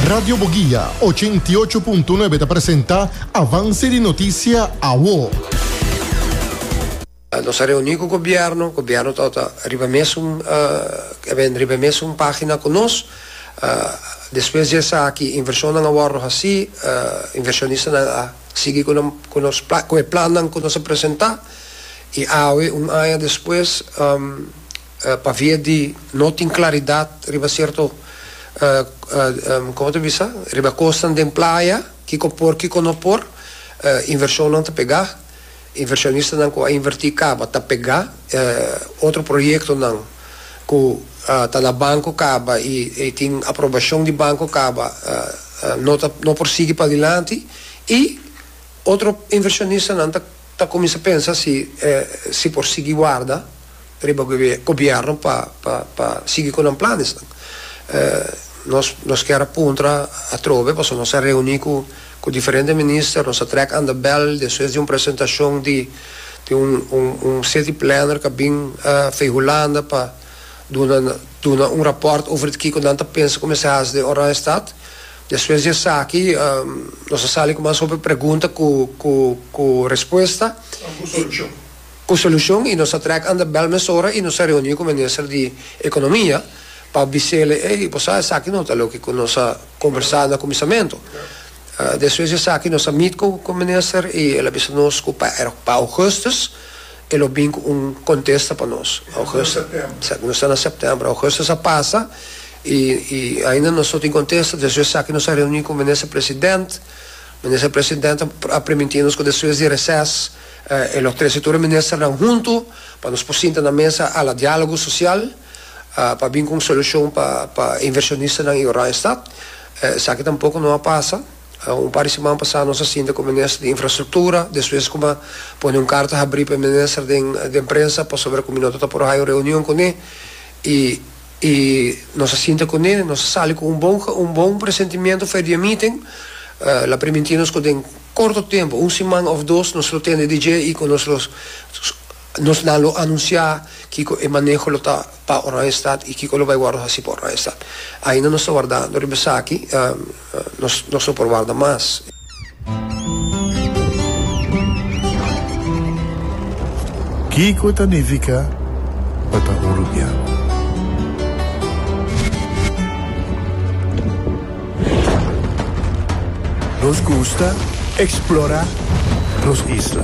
Radio Boguia ochenta i ocho punto nuebe ta presenta Avance di Noticia Awo. Nos a reuni cu gobierno, gobierno ta ota riba mesun e ben riba mesun pagina cu nos. Despues di esaki inversionnan a wordo haci, inversionistanan a sigui cu nan cu nos cu e plannan cu nos a presenta y awe un aña despues pavia di no tin claridad riba cierto como ta bisa riba cosnan den playa kico por kico no por inversionnan ta pega inversionistanan cu a inverti caba ta pega otro proyectonan cu ta na banco caba y tin aprobacion di banco caba no ta no por sigui padilanti y otro inversionistanan ta cuminsa pensa si si por sigui warda. riba gobièrnu pa pa sigui ku nan planesnan. Nos nos kier a puntra atrobe pasobra nos a reuní ku ku diferente minister, nos a trèk anda bèl despues di un presentashon di di un un un city planner ku a bin Fei Hulanda pa duna duna un rapòrt over kiko nan ta pensa ku mester hasi den Oranjestad. Despues di esaki nos a sali ku mas hopi pregunta ku ku ku respuesta. Cu solucion y nos a trek anda bel mesora y nos a reuni cu minister di Economia pa bisele, ey, bo sa esaki no ta loke cu nos a conversa na cuminsamento. Despues di esaki nos a meet cu cu minister y el a bisa nos cu pa er, pa Augustus el lo bin cu un contesta pa nos. Augustus, exacto, nos ta na September. Augustus a pasa y y ainda nos no tin contesta. Despues di esaki nos a reuni cu minister President. Minister President a permiti nos cu despues di reces, E lo trece tur e ministernan huntu pa nos por sinta na mesa a la dialogo social pa bin cu un solucion pa pa e inversionistanan y Oranjestad. Esaki tampoco no a pasa. Un par di siman pasa nos a sinta cu e minister di infrastructura, despues como a pone un carta habri pa e minister den den prensa pasobra cu mi no ta por hayo reunion cune y I nos a sinta kuné, nos a sali ku un bon un bon presentimiento for e dia meeting. La primintí nos ku den korto tempu, un siman òf dos, nos lo tende dje i ku nos lo nos nan lo anunsiá kiko e maneho lo ta pa Oranjestad i kiko lo bai wòrdu hasi pa Oranjestad. Ainda nos ta wardando riba esaki. nos no por warda mas. Kiko ta nifiká pa ta un rubian? Nos gusta eksplorá nos isla.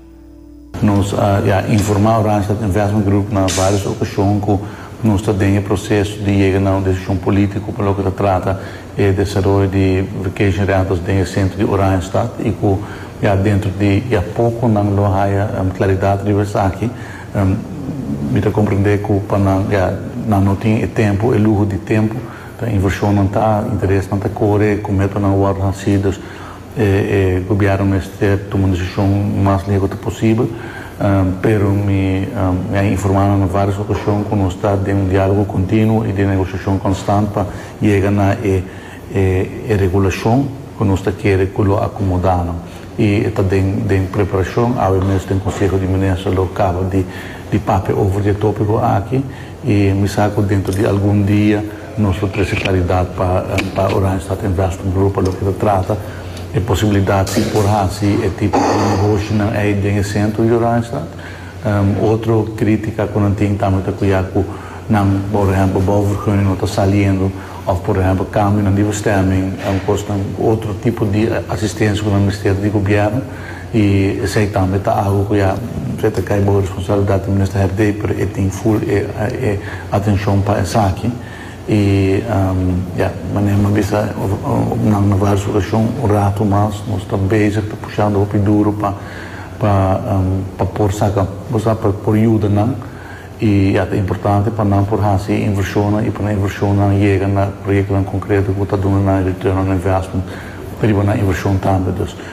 Nos a ya informa Randstad Investment Group na varios ocasion cu nos ta den e proceso di yega na un decision politico pa loke ta trata e desaroyo di vacation rentals den e centro di Oranjestad y cu ya dentro di ya poco nan lo haya claridad riba esaki. Mi ta comprende cu pa nan ya nan no tin e tempo, e luho di tempo, ta inversionnan ta, interesnan ta core, cu metonan worde haci, dus E gobièrnu mester tuma un desishon mas lego ta posibel, pero mi a informá nan na vários okashon ku nos ta den un diálogo kontinuo i den negosiashon konstant pa yega na e e regulashon ku nos ta kere ku lo akomodá nan. I e ta den den preparashon, awe mes den Konseho di Minister lo kaba di di papia over di e tópiko aki i mi sa ku dentro di algun dia, Nos lo trese claridad pa pa Oranjestad Investment Group pa loke ta trata e posibilidad si por haci e tipo di negoshinan ey den e centro di Oranjestad. Otro critica cu nan tin tambe ta cu ya cu nan por ehempel bouwvergunning no ta saliendo of por ehempel cambionan di bestemming, cosnan, otro tipo di asistencia cu nan mester di gobierno. I esei tambe ta agu ku ya presa ta kai bow e responsabilidat di Minister Herdey, pero e tin full e e atencion pa esaki. I ya, manera mi a bisa op nan na vala su rashon un ratu mas, nos ta bezig ta pushando hopi duru pa pa pa por saka, bo sa, pa por yuda nan. I ya, ta importante pa nan por hasi e invershonnan i pa nan invershonnan yega na proyektonan konkreto ku ta duna nan e return on investment riba nan invershon tambe.